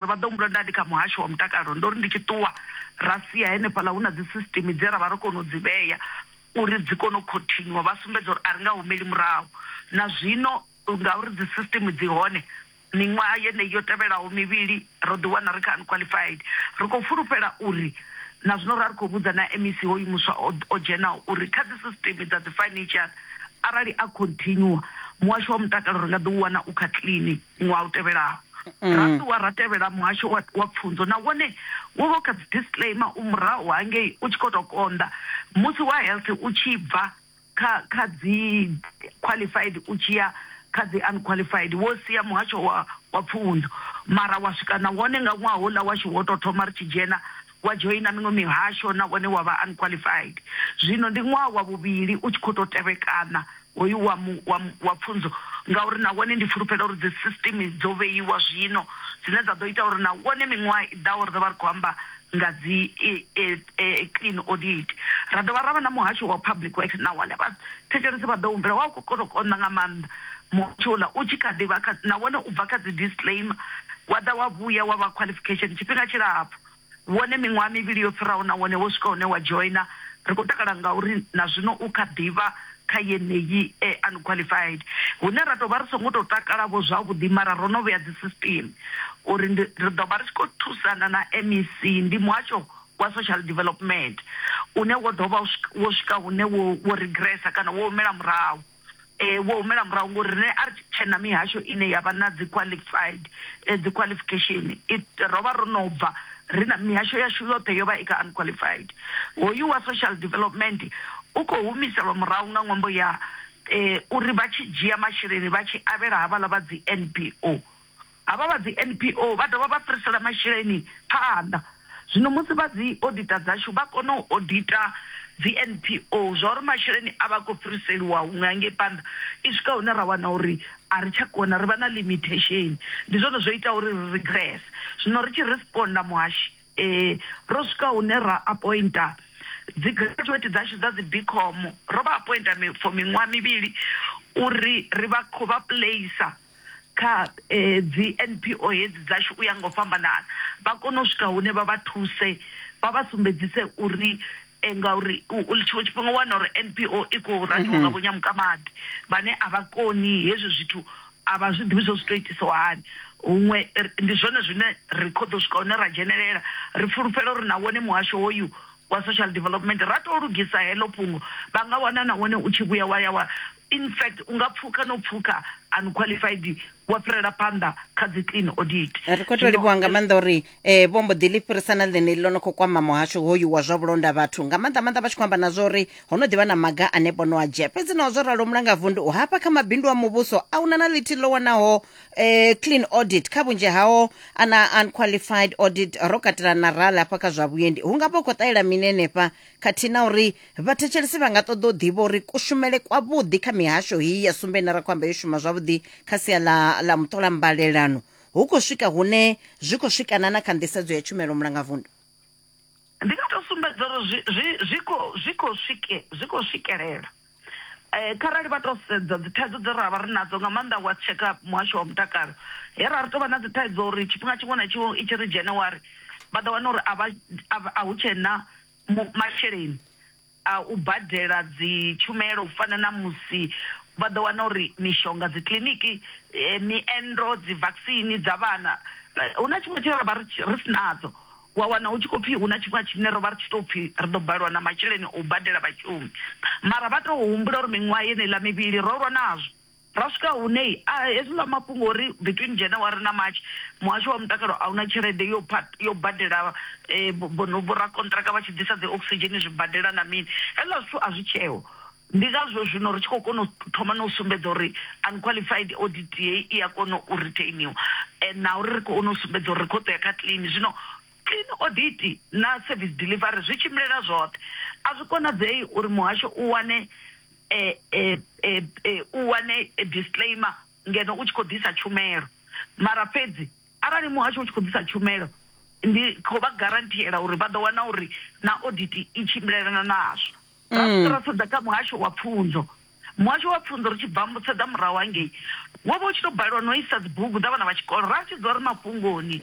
Ndo vha ḓo humbula nda ndi kha muhasho wa mutakalo, ndo ri ndi tshi ṱuwa ra sia henefhaḽa hu na dzi system dze ra vha ro kona u dzi vhea uri dzi kone u khothinywa vha sumbedza uri a ri nga humeli murahu na zwino ngauri dzi system dzi hone miṅwaha yeneyi yo tevhelaho mivhili ro ḓi wana ri kha unqualified ri khou fulufhela uri na zwino ra ri khou vhudza na MEC hoyu muswa o dzhenaho uri kha dzi system dza dzi financial arali a continue muhasho wa mutakalo ri nga ḓi u wana u kha clean. ṅwaha u tevhelaho mm. ra ṱuwa ra tevhela muhasho wa, wa pfunzo na wone wo vha kha dzi disclaimer u murahu hangei u tshi khou tou konḓa musi wa health u tshi bva kha kha dzi qualified u tshi ya kha dzi unqualified wo sia muhasho wa wa pfunzo mara wa swika na wone nga ṅwaha houḽa washu wo tou thoma ri tshi dzhena wa dzhoina miṅwe mihasho nahone wa vha unqualified. Zwino ndi ṅwaha wa vhuvhili u tshi khou tou tevhekana hoyu wa mu, wa mu, wa pfunzo, ngauri na wone ndi fulufhela uri dzisisitimi dzo vheiwa zwino dzine dza ḓo ita uri na wone miṅwaha i ḓaho ri ḓo vha ri khou amba nga dzi e, e, e, clean audit. Ra dovha ra vha na muhasho wa public works na wone vha thetshelesi vha ḓo humbela wa u khou kona u konḓa nga maanḓa muhasho uḽa u tshi kha ḓi vha kha na wone u bva kha dzi disclaimer wa ḓa wa vhuya wa vha qualification tshifhinga tshilapfu. wone miṅwaha mivhili yo fhiraho nahone wo swika hune wa dzhoina. Ri khou takala ngauri na zwino u kha ḓi vha kha yeneyi e unqualified. Hune ra tou vha ri songo tou takala-vho zwavhuḓi mara ro no vhea dzisisiṱeme uri ndi ri ḓo vha ri tshi khou thusana na MEC, ndi Muhasho wa Social Development une wo ḓo vha wo swika hune wo regressa kana wo humela murahu. vho humela murahu ngori riṋe a ri tshe na mihasho ine ya vha na dzi qualified dzi qualification ro vha ro no bva ri na mihasho yashu yoṱhe yo vha i kha unqualified hoyu wa social development u khou humiselwa murahu nga ṅwambo ya uri vha tshi dzhia masheleni vha tshi avhela havhaḽa vha dzi NPO Havha vha dzi NPO vha dovha vha fhirisela masheleni phanḓa. Zwino musi vha dzi odiṱa dzashu vha kona u odiṱa dzi NPO zwa uri masheleni a vha a khou fhiriseliwa huṅwe hangei phanḓa, i swika hune ra wana uri a ri tsha kona, ri vha na limithesheni. Ndi zwone zwo itaho uri ri rigrese. Zwino ri tshi responder Muhashi, ro swika hune ra apointa dzi graduate dzashu dza dzi Bcom, ro vha apointa for miṅwaha mivhili uri ri vha khou vha placer. kha dzi NPO hedzi dzashu u ya nga u fhambanana, vha kone u swika hune vha vha thuse vha vha sumbedzise uri ngauri tshiṅwe tshifhinga u wana uri NPO i khou raniwa nga vho Nyamukamadi vhane a vha koni hezwi zwithu a vha zwi ḓivhi zwo zwi to itiswa hani. Huṅwe ndi zwone zwine ri kho ḓo swika hune ra dzhenelela ri fulufhela uri na wone muhasho hoyu wa social development ra to lugisa heḽo fhungo vha nga wana na wone u tshi vhuya wa ya wa In fact, u nga pfuka no pfuka unqualified wa fhirela phanḓa kha dzi clean audit ri khou to livhuwa nga maanḓa uri um vho mbo ḓi ḽi fhirisa na ḽeneli ḽo no khou kwama muhasho hoyu wa zwa vhulonda vhathu nga maanḓa maanḓa vha tshi khou amba na zwa uri ho no ḓivha na maga ane vho no a dzhia fhedzi naho zwo ralo mulangavundu u hafha kha mabindu a muvhuso a una na ḽithihi ḽo wanaho um clean audit kha vhunzhi hao ana unqualified audit ro katela na rala hafha kha zwa vhuendi hu nga vha u khou ṱahela mini henefha khathihi na uri vhathetshelesi vha nga ṱoḓa u ḓivha uri kushumele kwavhuḓi kha mihasho heyi ya sumbe ine ra khou amba yo shuma zwavhuḓi kha sia ḽa ḽa muṱola mbalelano hu khou swika hune zwi khou swikana na kha nḓisedzo ya tshumelo mulangavundu ndi nga tou sumbedza uri zwi khou swikelela Kharali vha tou sedza dzi thaidzo dze ra vha ri nadzo nga maanḓa wa tsheka muhasho wa mutakalo he ra ri tovha na dzi thaidzo uri tshifhinga tshiṅwe na tshiṅwe i tshi ri January vha ḓo wana uri a vha a hu tshena masheleni a u badela dzi tshumelo u fana na musi vha ḓo wana uri mishonga dzi kiḽiniki miendo dzi vaccine dza vhana hu na tshiṅwe tshine ra vha ri si nadzo. wa wana hu tshi khou pfhi hu na tshifhinga tshine ro vha ri tshi tou pfhi ri ḓo balelwa na masheleni a u badela vhashumi. Mara vha tou humbula uri miṅwaha yeneiḽa mivhili ro lwa nazwo. Ra swika hune a hezwiḽa mafhungo ori between January na March muhasho wa mutakalo a u na tshelede yo yo badela vho rakonṱiraka vha tshi ḓisa dzi oxygen zwibadela na mini, hezwiḽa zwithu a zwi tsheho. Ndi ngazwo zwino ri tshi khou kona u thoma na u sumbedza uri unqualified audit heyi i a kona u retainiwa na uri ri kone u sumbedza uri ri khou ḓo ya kha clean. Zwino clean audit na service delivery zwi tshimbilela zwoṱhe. A zwi konadzei uri muhasho u wane u wane disclaimer ngeno u tshi khou ḓisa tshumelo. Mara fhedzi arali muhasho u tshi khou ḓisa tshumelo ndi khou vha guaranteeḽa uri vha ḓo wana uri na audit i tshimbilelana nazwo. ra mm. swika ra sedza kha muhasho wa pfunzo muhasho wa pfunzo ri tshi bva mutsedza murahu hangei wo vha u tshi tou balelwa no isa dzibugu dza vhana vha tshikolo ra tshi dzula ri mafhungoni